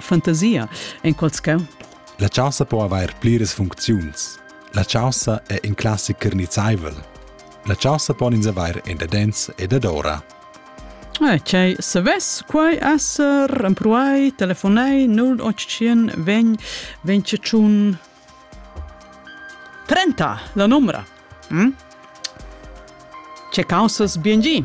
fantasia en qual tgau? La chaussa po avair pliras funcziuns. La chaussa è in classic carnizzaivel. La chaussa pon ins avair en dadens e dadora. Eh, Cei, savess quai esser empruai, telefonei 0800 ven, venciun 30, la numera. Hm? Ce causas bien gi?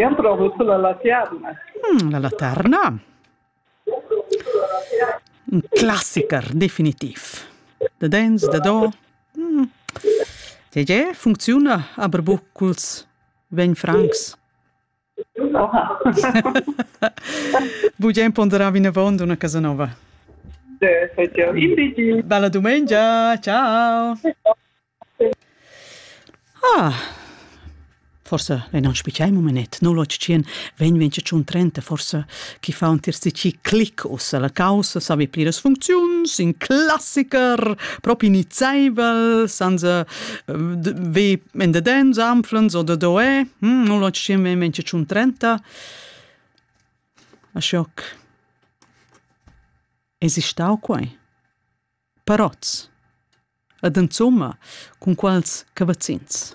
Jam provu sur la laterna. Mm, la laterna. Un classiker, definitiv. Da dents, da do. Mm. Tge funcziuna aber buc culs vegn francs? Oha. Bugen ponderavi nevon d'una casa nova. Bella dumengia, ciao. Ah, forsa ei non spiciai mumenet, no lo tschien vegn vegn tschun trenta, forsa chi fa un tirsici clic ussa la caussa, savi pliras funcziuns, in classiker, propi nizeivel, senza ve in the dance anflens oder doe, hm, no lo tschien vegn vegn tschun trenta. Aschoc. Es istau quei? parots. Ed insomma, cun quals cavazzins.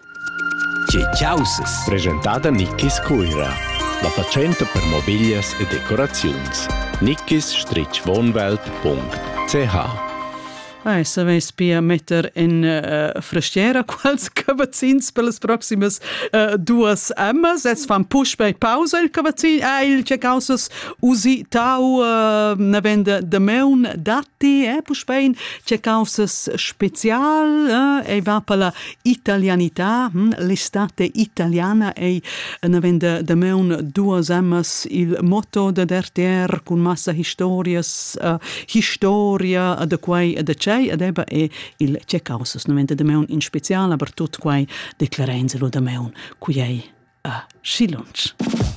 Tge chausas? Presentada Nickis Cuira. La fatschenta per mobiglias e decoraziuns. nickis-wohnwelt.ch Ah, saveis pia metter in uh, frestiera quals cavazzins per las proximas uh, duas emmas. Es fan puspei pausa il cavazzin. Ah, il che causas usitau uh, ne vende de meun dat ti è puspei c'è causas special eh, ei va per la italianità hm, l'estate italiana ei naven de, de meun duas amas il motto de derter cun massa historias uh, historia de quai de cei ed eba e il c'è causas naven de meun in special aber tut quai declarenze lo de meun qui ei uh, eh, si lunch